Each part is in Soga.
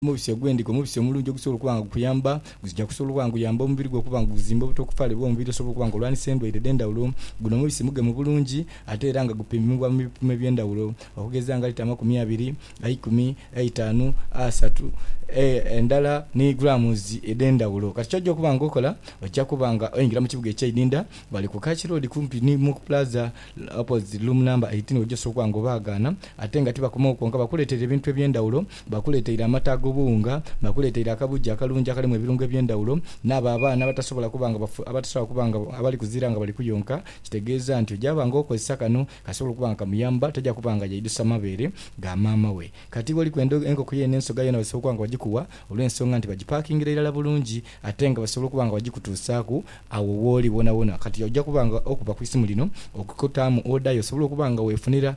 Omubisi ogw'endiga, omubisi omulungi ogusobola okuba nga gukuyamba, guzija kusobola okuba nga guyamba omubiri gwo okuba nga guzimba obuta okufaale bw'omubiri osobola okuba nga olwanisa endwaire edh'endhawulo. Guno omubisi mugemu bulungi ate era nga gupimibwa mu bipimo eby'endhawulo okugeza nga lita amakumi abiri, eikumi, eitaanu, asatu, e, endala ni grams edh'endhawulo. Kati ky'oja okuba nga okola, oja kuba nga oingira mu kibuga eky'eidinda ghale ku Kach Road kumpi ni Muku Plaza, opposite room number eighteen, oja osobola okuba nga obaagaana ate nga tibakomawo kwonka, bakuleetere ebintu eby'endhawulo Bakuleeteire amata ag'obuwunga, bakuleeteire akabugi akalungi akalimu ebirungo eby'endhawulo, n'abo abaana abatasobola kuba nga bafu, abatasobola kuba nga, abali kuzira nga bali kuyonka, kitegeeza nti oja ba nga okozesa kano kasobola okuba nga kamuyamba, taja kuba nga yaidhusa mabeere ga maama we. Kati iwe oli kwenda enkoko yo n'ensoga yoona basobola okuba nga bagikuwa olw'ensonga nti bagipaakingira irala bulungi ate nga basobola okuba nga bagikutuusaaku agho wooli wonawona. Kati oja kuba nga okuba ku isimu lino okutaamu oda yo osobole okuba nga weefunira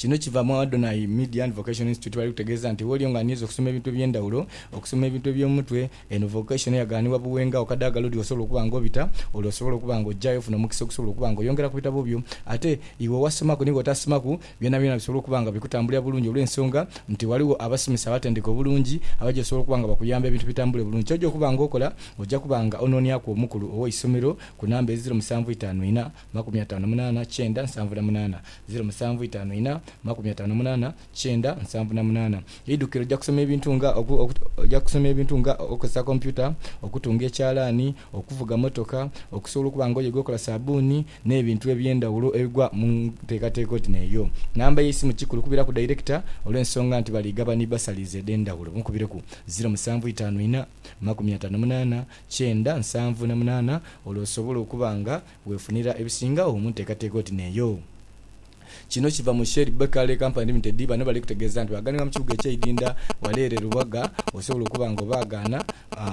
Kino kiva mu Adonai Media and Vocational Institute bali kutegeeza nti woli nga aniiza okusoma ebintu eby'endhawulo, okusoma ebintu eby'omutwe, eno vocation eyagaanibwa Buwenga okadaagala odi w'osobola okuba nga obita, ole osobola okuba nga ojayo ofuna omukisa okusobola okuba nga oyongera ku bitabo byo ate iwe owasomaku ni w'otasomaku byonabyona bisobole okuba nga bikutambulira bulungi olw'ensonga nti ghaligho abasomesa abatendeke obulungi abaja osobola okuba nga bakuyamba ebintu bitambule bulungi. Ky'oja okuba nga okola oja kuba nga onooniaku omukulu ow'eisomero ku namba eziro musanvu itaanu ina. makumi ataano munaana kyenda nsanvu na munaana, ziro musanvu itaanu ina, makumi ataano munaana kyenda nsanvu na munaana. Eidhuukiro lija kusoma ebintu nga oku, oku, lija kusoma ebintu nga okukozesa kompyuta, okutunga ekyalaani, okuvuga mmotoka, okusobola okuba nga oyega okola saabbuuni, n'ebintu eby'endhawulo ebigwa mu nteekateeka oti n'eyo. Namba y'eisimu kikulu kubiraku dayirekita olw'ensonga nti bali gaba ni bbasaliizi edh'endhawulo. Mukubireku, ziro musanvu itaanu ina, makumi ataano munaana kyenda nsanvu na munaana olwo osobole okuba nga Weefunira ebisingagho mu nteekateeka oti n'eyo. Kino kiva mu Shell, Bekaer, Company Limited, bano bali kutegeeza nti bw'aghanibwa mu kibuga eky'Idinda wale ere Lubaga osobola okuba nga obaagaana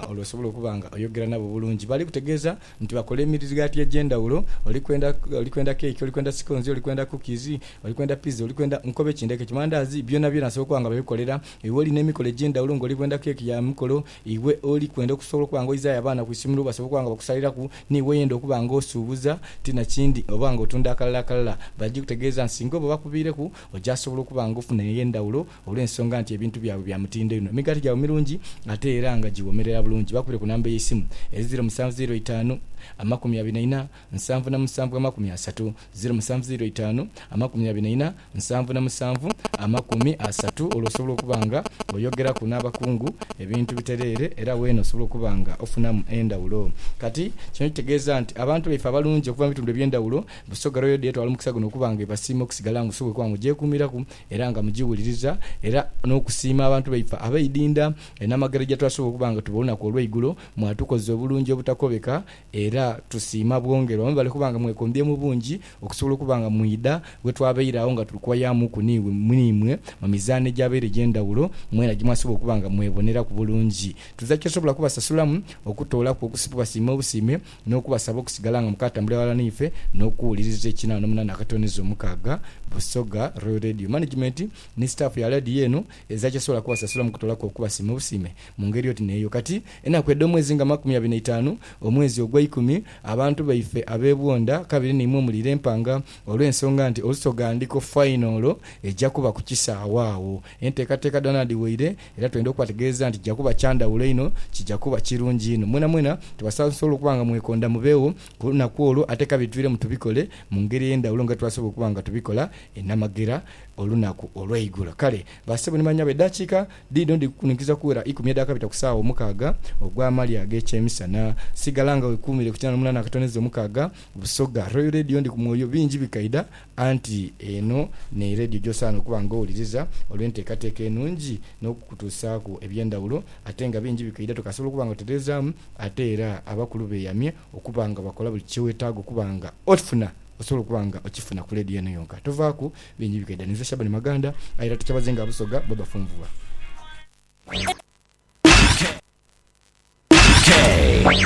olwo osobola okuba nga oyogera nabo bulungi. Bali kutegeeza nti bakola emirirgati egy'endhawulo, oli kwenda oli kwenda keeki, oli kwenda sikoonzi, oli kwenda cookies, oli kwenda pizza, oli kwenda nkobe ki ndheke ki, mandaazi byonabyona asobola okuba nga babikolera iwe oli n'emikolo egy'endhawulo ng'oli bwenda keeki ya mikolo, Iwe oli kwenda okusobola okuba nga oizaayo abaana ku isomero basobole okuba nga bakusaliraku, n'iwe oyenda okuba nga osuubuza, ti na kindi oba nga otunda akalala akalala, bali gikutegeeza nti singa oba bakubiireku ojasobola okuba nga ofuna ey'endhawulo olw'ensonga nti ebintu byabwe bya mutindo inho, emigaati gyabwe mirungi ate era nga giwoomerera bulungi. Bakubire ku namba y'eisimu, eri ziiro musanvu ziiro itaanu, amakumi abiri na ina, nsanvu na musanvu amakumi asatu, ziro musanvu ziro itaanu, amakumi abiri na ina, nsanvu na musanvu amakumi asatu, olwo osobola okuba nga oyogeraku n'abakungu ebintu bitereere era weena osobola okuba nga ofunamu endhawulo. Kati, kino kitegeeza nti abantu baife abalungi okuva mu bitundu eby'endhawulo, Busoga Royal Day etwala omukisa guno okuba nga ebasiima okusigala nga osobola okuba nga ogyekuumiraku era nga mugiwuliriza era n'okusiima abantu baife abeidinda enamagero gyetwasobola okuba nga tuba olunaku olweigulo mwatukoza obulungi obutakobeka Era tusiima bwongerwa mwebale okuba nga mwekombye mu bungi okusobola okuba nga mwidha we twabaire agho nga tuli kuwayamuuku n'imwe mu mizaano egyabaire egy'endhawulo mwena gye mwasobola okuba nga mweboneraku bulungi. Tuza kyosobola kubasasulamu okutoolaku okubasiima obusiime n'okubasaba okusigala nga mukaatambulira ghalala n'ife n'okuwuliriza ekinaa n'omunaana akatooneza omukaaga Busoga Royal Radio Management ni sitaafu ya leediyo eno eza kyesobola kubasasulamu okutoolaku okubasiima obusiime Mu ngeri oti n'eyo kati, enaku edh'omwezi nga makumi abiri na itaanu, omwezi ogweikumi, abantu baife ab'ebwondha kabiri n'imwe muli lempanga, olw'ensonga nti Olusoga ndiko fainolo eja kuba ku kisaawe agho. Enteekateeka dhoona dhiweire, era twendha okubategeeza nti kija kuba kya ndhawulo inho, kija kuba kirungi inho. Mwenamwena tubasaasosola okuba nga mwekondha mubeegho ku lunaku olwo, ate kabiri twiremu tubikole mu ngeri ey'endhawulo nga twasobola okuba nga tubikola enamagera olunaku olweigulo. Kale bassebo ni bannyabo, edaakiika Dhidho ndhikukuninkiriza okuwera ikumi edhakabita ku saawa omukaaga ogw'amaali ag'ekyemisana. Sigala nga wekuumire ku kinaana omunaana akatoneza omukaaga Busoga. Royal Radio ndi ku mwoyo bingi bikaidha, anti eno n'e Radio gy'osaana okuba nga owuliriza olw'enteekateeka enungi n'okukutuusaaku eby'endhawulo ate nga bingi bikaidha tokasobola okuba nga otereezaamu ate era abakulu beeyamye okuba nga bakola buli kyewetaaga okuba nga ofuna Osobola okuba nga okifuna ku leediyo eno yonka. Tovaaku bingi bikaidha. Ninze Shaban Maganda, aye era tukyabaze nga Busoga bwe bafunvubwa.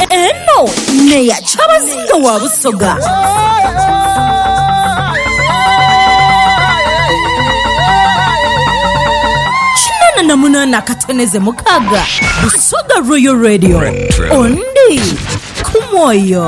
Eno neya kyabazinga wa Busoga. Kinana na munana akatoneze mukaga Busoga Royal Radio ondi ku mwoyo.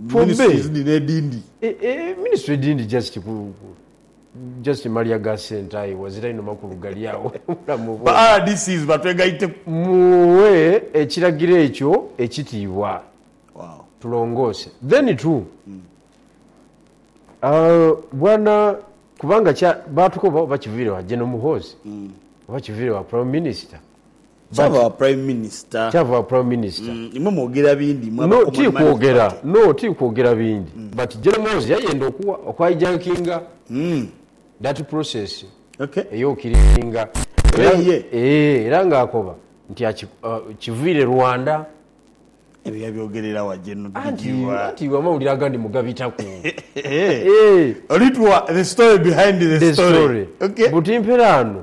ministries dhino edindi. Ministry edindi just ku just malya ga sente aye wazira inho makulu gali agho obulamu Ba bwona. rdcs batwegaiteku. Mughe ekiragiro ekyo ekitiibwa tulongoose then too aah bwana kubanga kya baatukoba oba kiviire wa General Muhoozi oba kiviire wa Prime Minister Kyava wa Prime Minister. Kyava wa Prime Minister. Imwe mwogera bindi imwe aba Common Man Party. No, tiri kwogera bindi. But Gen Muhoozi yayenda oku hijackinga that process eyo kirisinga era nga akoba nti kiviire Rwanda. Ebyo yabyogerera wa Gen Bigirwa? Anti iwe amawulire agandi mugabitaku. Olituwa the story behind the story. But mperaano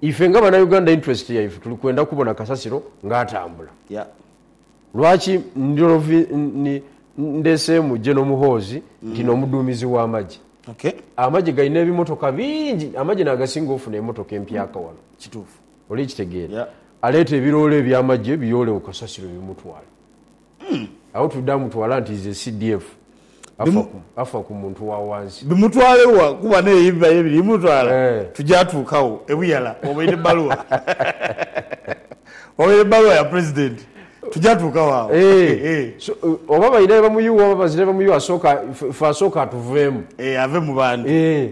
Ife nga banauganda interest yaife tuli kwenda kubona kasasiro nga atambula. Lwaki ndheseemu General Muhoozi nti n'omuduumizi w'amagye? Amagye galina ebimotoka bingi, amagye n'agasinga ofuna emotoka empyaka wano. Oli kitegeera? Aleeta ebiroole eby'amagye biyoole ku kasasiro bimutwale. Agho twidha mutwala nti is a CDF afa ku muntu wa wansi. Bimutwale wa kuba neye ebibayo ebiri mutwala tuja tuuka wo ebuyala wabaire ebbaluwa wabaire ebbaluwa ya president tuja tuuka wo agho eeh. Oba balina bye bamuyugha oba bazira bye bamuyugha asooke ife asooke atuveemu. Eeh ave mu bantu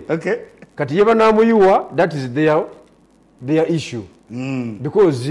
ok. Kati ye banamuyugha that is their their issue because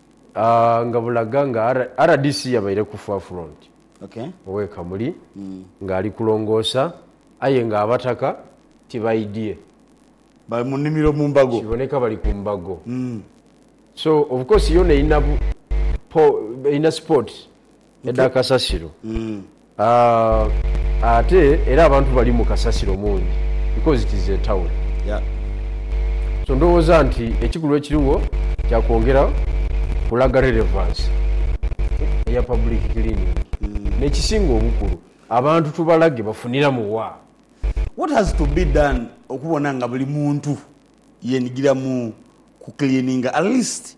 nga bulaga nga rdc yabaire ku forefront ow'e Kamuli ng'ali kulongoosa aye ng'abataka tibaidhie. Bali mu nnhimiro mu mbago. Kiboneka bali ku mbago. So of course yoona erina erina spot Edha kasasiro aah ate era abantu balimu kasasiro mungi because it is a town so ndhowooza nti ekikulu ekirigho kya kwongera kulaga relevance eya public cleaning nekisinga obukulu abantu tubalage bafuniramu wa. What has to be done okubona nga buli muntu yenigira mu ku cleaninga at least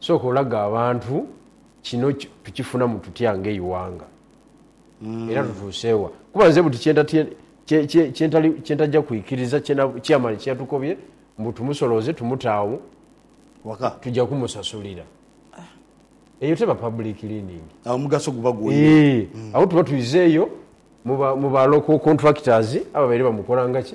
Sooka olage abantu kino tukifunamu tutya ng'eighanga era tutuuse wa? Kuba nze buti kye ntaja kwikiriza chairman kye yatukobye mbu tumusolooze tumute agho tuja kumusasulira. Eyo teba public cleaning. Agho omugaso guba gwoire. Eeh, agho tuba twizeeyo mu ba local contractors ababaire bamukola nga ki?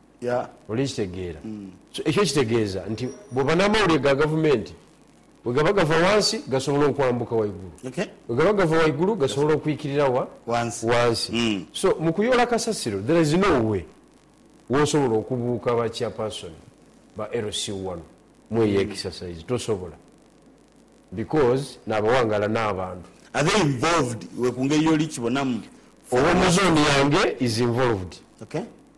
ya. Oli kitegeera? So, ekyo kitegeeza nti bw'oba n'amawulire ga gavumenti, bwe gaba gava wansi gasobola okwambuka waigulu, bwe gaba gava waigulu gasobola okwikirira wa? wansi. So, mu kuyoola kasasiro, there is no way w'osobola okubuuka ba chairperson ba LC wano mu eyo exercise. Tosobola. Because n'abawangaala n'abantu. Are they involved iwe ku ngeri y'oli kibonamu? Ow'omu zooni yange is involved.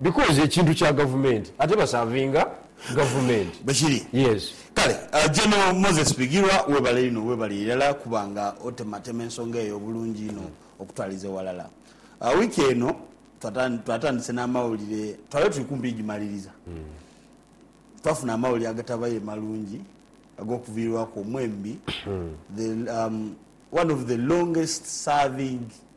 Because ekintu kya gavumenti ate basavinga gavumenti. Bwekiri. Yes. Kale General Moses Bigirwa webale inho webale irala kuba nga otematema ensonga eyo bulungi inho okutwaliza ewalala. Week eno twatandise namawulire twali tuli kumpi igimaliriza twafuna amawulire agatabaire malungi agokuvirirwaku omwembi the one of the longest serving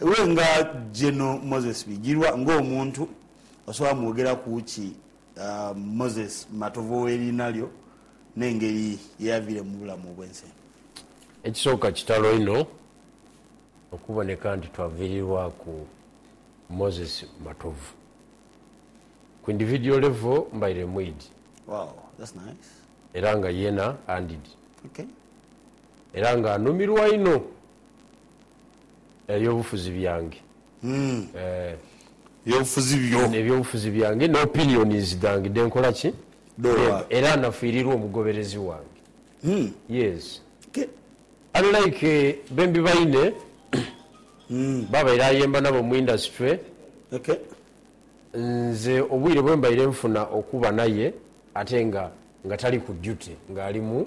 Iwe nga General Moses Bigirwa nga omuntu osobola mwogeraku ki Moses Matovu ow'eriina lyo n'engeri ye yaviire mu bulamu obw'ensi eno? Ekisooka kitalo inho okuboneka nti twaviirirwaku Moses Matovu. Ku individual level mbaire mwidhi era nga yeena andidhi era nga anumirwa inho. Eby'obufuzi byange, eeh. Eby'obufuzi byo. Eby'obufuzi byange n'opinions dhange dhenkola ki? Dh'ogha. Era nafiirirwa omugoberezi wange. Yes. Unlike bembi baine b'abaire ayemba nabo mu industry, nze obwire bwe mbaire nfuna okuba naye ate nga nga tali ku duty ng'ali mu.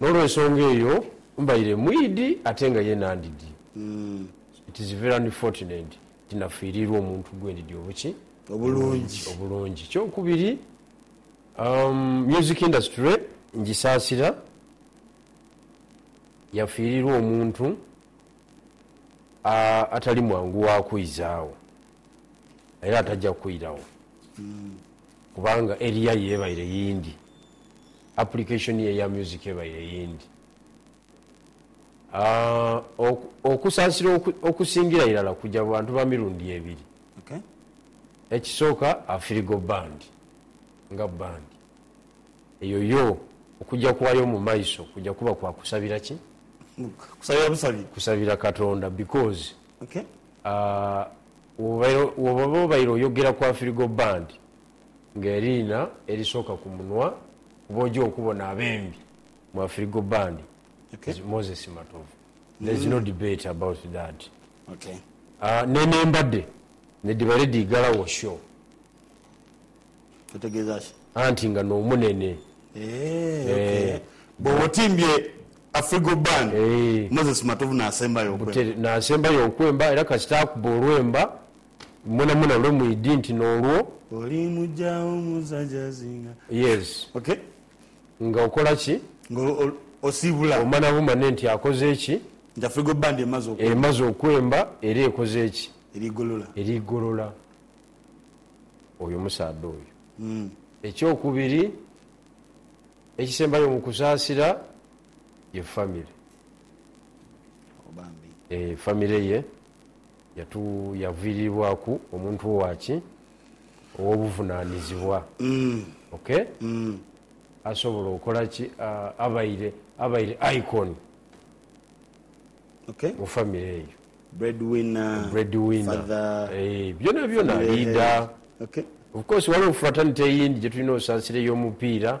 N'olwensonga eyo mbaire mwidhi ate nga ye nandidhi. It is very unfortunate nti nafiiriirwa omuntu gwe ndidhi obuki? Obulungi. Obulungi. Ekyokubiri, umm music industry ngisaasira, yafiiriirwa omuntu a atali mwangu wa kwizaagho era ataja kwiragho kubanga area yebaire yindi. Application ye ya music ebaire yindi. Okusaasira okusingira irala kuja mu bantu ba mirundi ebiri. Ekisooka Afirigo Band nga band eyo yo okuja kwayo mu maiso kuja kuba kwa kusabira ki? Kusabira busabi. Kusabira Katonda because woba obaire oyogera ku Afirigo Band, nga eriina erisooka ku munwa kuba oja okubona abembi mu Afirigo Band is Moses Matovu there is no debate about that ne nembade nedhiba ready ighalawo show anti nga nomunene eeh nasembayo okwemba era kasita akuba olwemba. Mwonamwona lwe mwidhi nti n'olwo. Oli muja wo musajazinga. Years. Okay. Nga okola ki? Nga osibula. Omana bumane nti akoze ki? Nti Afrigo Band emaze okwemba. Emaze okwemba era ekoze ki? Eri golola. Eri golola oyo musaadha oyo. Eky'okubiri, ekisembayo mu kusaasira ye family. Bambi. Eeh family ye Yatuyaviriribwaku omuntu owa ki? Ow'obuvunanizibwa. Ok? Asobola okola ki? Abaire, abaire icon mu famire eyo. Breadwinner. Eeh, byona byona, leader. Of course, ghaligho fratanite eyindi gyetulina osaasira ey'omupiira,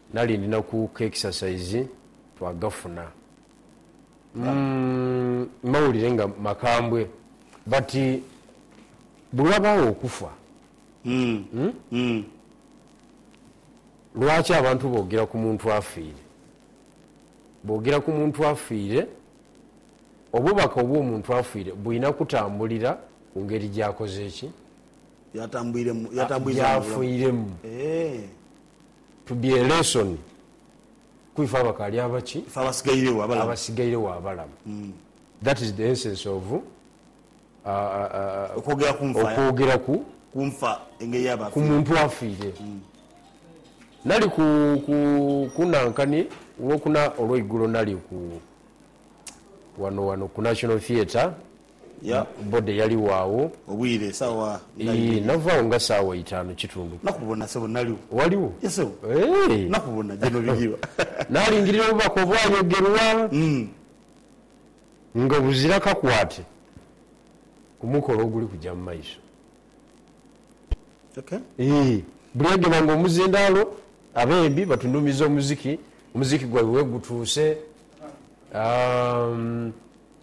Nali ndina ku k'ekisasaizi twagafuna umm mawulire nga makambwe but bwewabaawo okufa umm lwaki abantu bogera ku muntu afiire bogera ku muntu afiire obubaka obw'omuntu afiire bwina kutambulira ku ngeri gyakoze ki? Gyatambwiremu gyafwiiremu. Tudie elesson ku ife abakaali abaki? Ife abasigairegho abalamu. Abasigairegho abalamu. That is the essence of Okwogera ku nfa. Okwogera ku. Ku nfa engeri yaaba afiire. Ku muntu afiire. Nali ku, ku, ku nankani lwokuna olweigulo nali ku, wano, wano ku National Theatre Ya. Body yaligho agho. Obwire sawa nga Ii, ibiri. nava agho nga sawa itanu kitundu. Nakubona sebo naligho. Waligho? Ye sebo. Eeh. Nakubona je nobigirwa. Nalingirira obubaka obwayogerwa nga buzira kakwate ku mukolo oguli kuja mu maiso. Okay. Ii, Buli agema nga omuzindaalo abembi batunumiza omuziki, omuziki gwaibwe wegutuuse. Aah,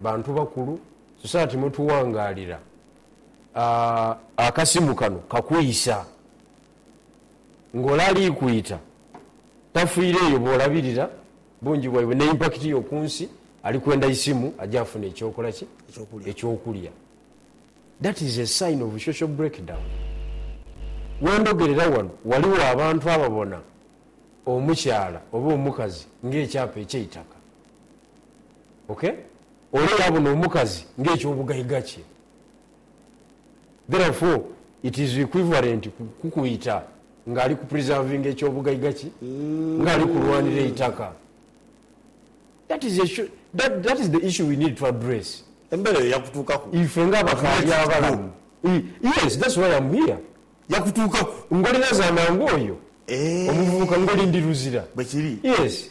bantu bakulu society mwetuwangaalira akasimu kano kakwisa nga ole ali kwita tafiire eyo bwolabirira bungi bwaibwe ne impact yo ku nsi ali kwenda isimu aje afune ekyokola ki? ekyokulya that is a sign of social breakdown wendhogerera wano waliwo abantu ababona omukyala oba omukazi nga ekyapa ekyeitaka ok olwo yabona omukazi nga ekyobugaiga kye therefore it is equivalent kukuyita nga ali ku preservinga ekyobugaiga kye nga ali kulwanira eitaka that is a that is the issue we need to address embera eyo yakutuukaku ife nga abakali abalamu yes that's why am here yakutuukaku ngoli nazaala nga oyo omuvubuka ngoli ndi luzira bwekiri yes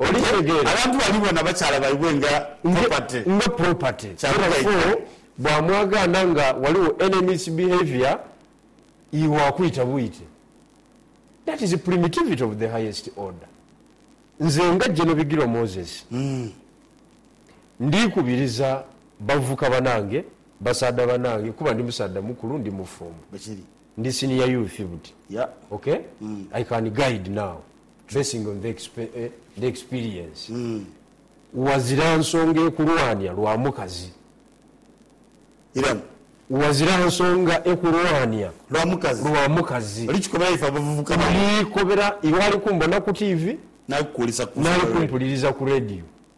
Abantu balibona bakyala baibwe nga property. Nga property. Therefore bwamwagaana nga ghaligho any misbehaviour iwe akwita bwite. That is primitivity of the highest order. Nze nga General Bigirwa Moses ndikubiriza bavubuka banange, basaadha banange kuba ndi musaadha mukulu, ndi mufumbo. Ndi senior youth buti ok i can guide now basing on the experience wazira nsonga ekulwanya lwa mukazi wazira nsonga ekulwanya lwa mukazi olikobera iwe ali kumbona ku TV nali kumpuliriza ku radio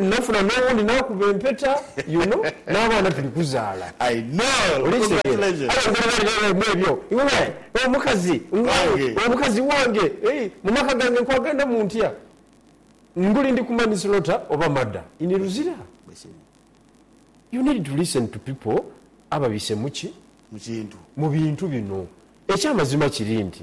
Nafuna n'owundi n'akuba empeta you know n'abaana tuli kuzaala. Oli kitegera? Aye omugole ghali naye ghalimu ebyo iwe omukazi wange omukazi wange eeh mu maka gange nkwagandamu ntya? Nguli ndi ku manslaughter oba murder in Luzira? You need to listen to pipo ababise mu ki? Mu bintu bino. Eky'amazima kiri nti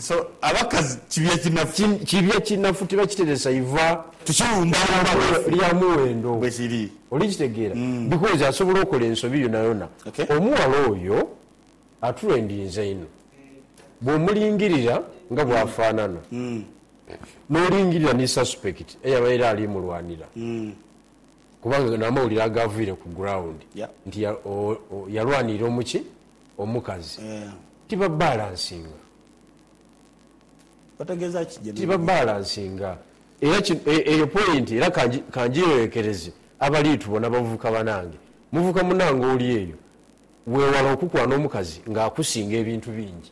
So abakazi kibya kinafu. Kibya kinafu tibakiteresa iva. Tukiwumbalumba bwaife. Lya muwendo. Bwekiri. Olikitegeera? Because asobola okola ensobi yonayona. Omuwala oyo aturendinze inho. Bwomulingirira nga bwafanana, nolingirira ni suspect eyabaire ali mulwanira, kubanga namawulire agaviire ku ground nti yalwanirira omuki? Omukazi. Tibabalansinga. Otegeeza ki gyeneeno? Tibabalansinga. Era kino, e, eyo poyinti, era ka, ka ngigheekereze abaliitubona, bavubuka banange. Muvubuka munange oli eyo, weewale okukwana omukazi nga akusinga ebintu bingi.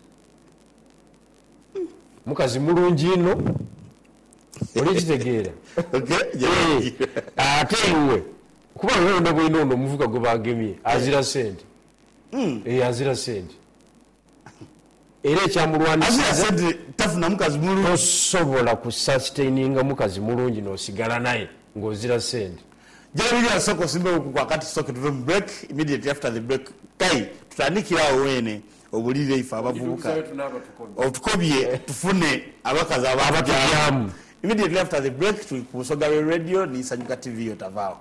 Mukazi mulungi inho. Oli kitegeera? Ee. Ate iwe, kuba nga oli na bwino ono omuvubuka gwe baagemye, azira sente. Eyo azira sente era ekyamulwanisa. Azira sente tafuna mukazi mulungi. Tosobola ku sustaininga mukazi mulungi nosigala naye nga ozira sente. Jabirya sooka osimbewo kuku akati tusooke tuve mu break immediately after the break Kaye tutandikire agho weene obulire ife abavubuka otukobye tufune abakazi abatugyamu immediately after the break tuli ku Busoga Real Radio ni Nsanyuka TV yo tavaagho.